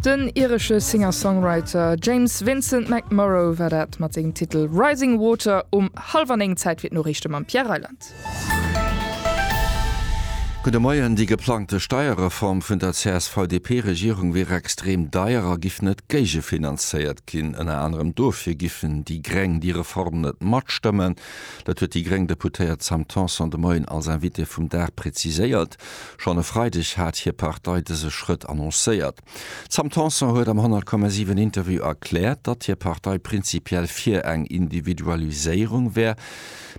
Den iresche Singer-Songwriter James Vincent McMorrow war dat mat sengem Titel Rising Water um hallwer 9 Zäit fir d'Noriichte mam Pierre Reyland. Gudde Moien, Déi geplangte Steierreform vun der CSV-DP-Regierung wier extrem deier a giff net géigefinanzéiert ginn. Ënner anerem dofir giffen déi Gréng déi Reform net matstëmmen. Dat huet déi gréng Deputéiert Sam Tanson de Moien als Invitée vum Dag präziséiert. Schonn e Freideg hat hir Partei dëse Schrëtt annoncéiert. D'Sam Tanson huet am 100,7 Interview erkläert, datt hir Partei prinzipiell fir eng Individualiséierung wär,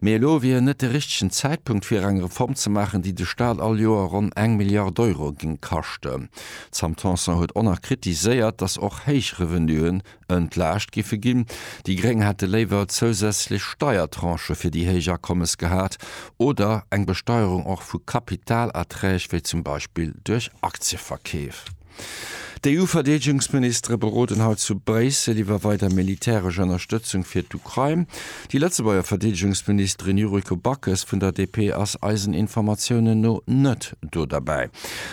mee elo wier net de richtegen Zäitpunkt fir eng Reform ze maachen, déi de Staat all Joer ronn eng Milliard Euro géing kaschten. D'Sam Tanson huet onerkritiseiert, datt och héich Revenue Entlaascht giffe ginn. Déi Gréng hätte léiwer zousätzlech Steiertranchë fir déi héich Akommes gehat oder eng Besteierung och vu Kapitalerträg, wéi zum Beispill duerch Aktieverkeef. D'EU-Verdeedegungsministere beroden haut zu Bréissel iwwer weider militäresch Ënnerstëtzung fir d'Ukrain. Déi Lëtzebuerger Verdeedegungsministerin Yuriko Backes vun der DP ass eisen Informatiounen no net do derbäi.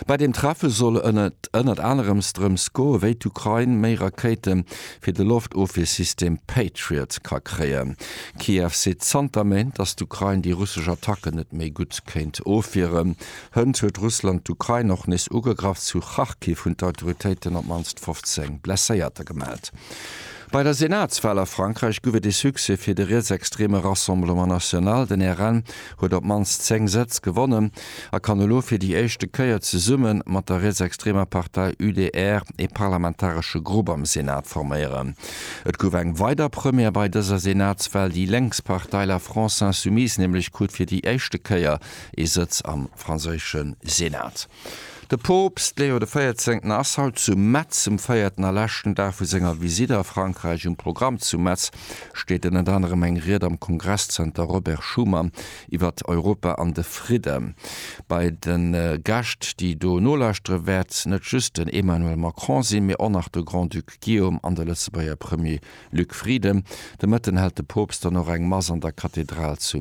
Bei deem Treffe soll et ënnert anerem drëms goen, wéi d'Ukrain méi Rakéite fir de Loftofwiersystem Patriot ka kréien. Kiew seet zanter Méint, datt d'Ukrain déi russesch Attacken net méi gutt kéint ofwieren. Hënt huet Russland d'Ukrain och nees ugegraff. Zu Kharkiv hunn d'Autoritéiten op d'mannst 15 Blesséierter gemellt. Bei der Senatswal a Frankräich gouf et ee Succès fir de rietsextreme Rassemblement National. Den RN huet op d'mannst 10 Sëtz gewonnen a kann elo fir déi éischte Kéier zesumme mat der rietsextremer Partei UDR ee parlamentaresche Grupp am Senat forméieren. Et gouf eng weider Première bei dëser Senatswal, Déi lénks Partei La France Insoumise nämlech krut fir déi éischte Kéier ee Sëtz am franséische Senat. De Poopst Leo de Véierzéngten ass haut zu Metz um véierten a leschten Dag vu senger Visitt a Frankräich. Um Programm zu Metz steet ënnert anerem eng Ried am Kongresszenter Robert Schuman iwwert Europa an de Fridde bei de Gäscht, déi do nolauschtere wäert net just den Emmanuel Macron sinn, mee och nach de Grand-Duc Guillaume an de Lëtzebuerger Premier Luc Frieden. De Mëtten hält de Poopst dann och eng Mass an der Kathedral zu